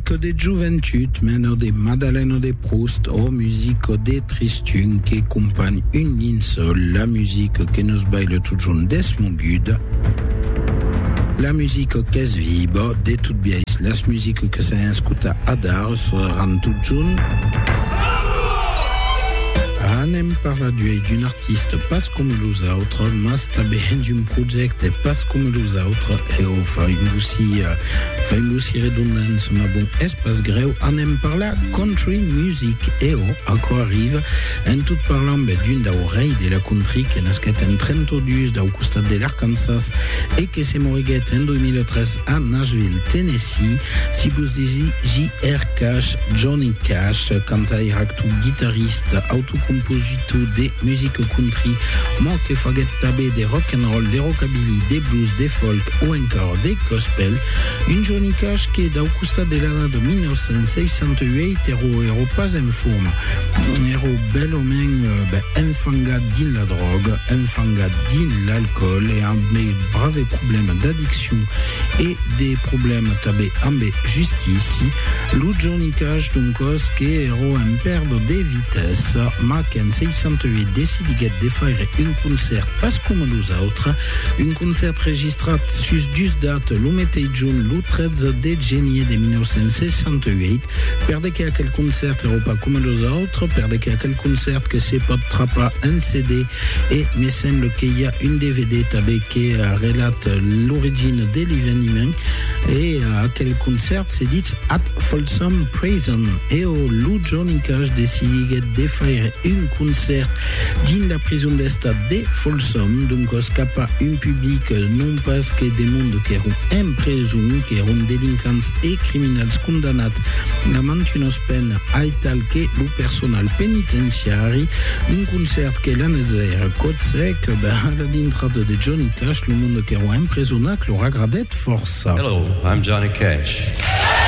Que de joventut, men ò de Madalen ò de Proust, ò music ò de tristun que companh un nin sol, la music que nos baile totjorn desmogut, la music qu'es viba, de tot biais las music que s'an escuta adar seràn totjorn. Anem parlar d'uei d'un artista. Artiste pas coma los autres, mas tanben hènt un projècte pas coma los autres, e o faimossi, faimossi redondance, mas bon, es pas grèu, anem parlar country music, e o aquò arriva, en tot parlamb d'un dau rei de la country que nasquèt en 32 dau costat de l'Arkansas e que se moriguèt en 2003 a Nashville, Tennessee, si vos disi JR. Cash, Johnny Cash, cantaire, actor, guitarrista, autocompositor, Tout de musique country, mò que faguèt tanben de rock and roll, de rockabilly, de blues, de folk o encòr de gospel. Un Johnny Cash que, dau costat de l'ana de 1968, èro èro pas en forma. Èro bèl o mèn, ben, enfangat dins la dròga, enfangat dins l'alcoòl e amb de brave problèmas d'addiccion e de problèmas tanben ambe justici. Lo Johnny Cash, doncòs, que èro en pèrdre de vida. Tès, mac en 68 decidiguèt de faire un concèrt pas coma los autres, un concèrt registrat sus dus dates lo meteis junh, lo 13 de genier de 1968, per de que aquel concèrt èrò pas coma los autres, per de que aquel concèrt que se pòt trapar en CD e me semble que i a un dvd tanben que relat l'origina de l'eveniment e aquel concèrt se ditz At Folsom Prison, eau lo Johnny Cash decidiguèt de faire un concèrt dins la prison d'estat de Folsom, doncas cap a un public non pas que de monde qu'èron en preson, qu'èron delincants e criminals condamnats a mantunas penas aital que lo personal penitenciari. Un concèrt que l'anés veire còth sec, ben a la dintrada de Johnny Cash lo monde qu'èron empresonats lor agradèt fòrça. Hello, I'm Johnny Cash.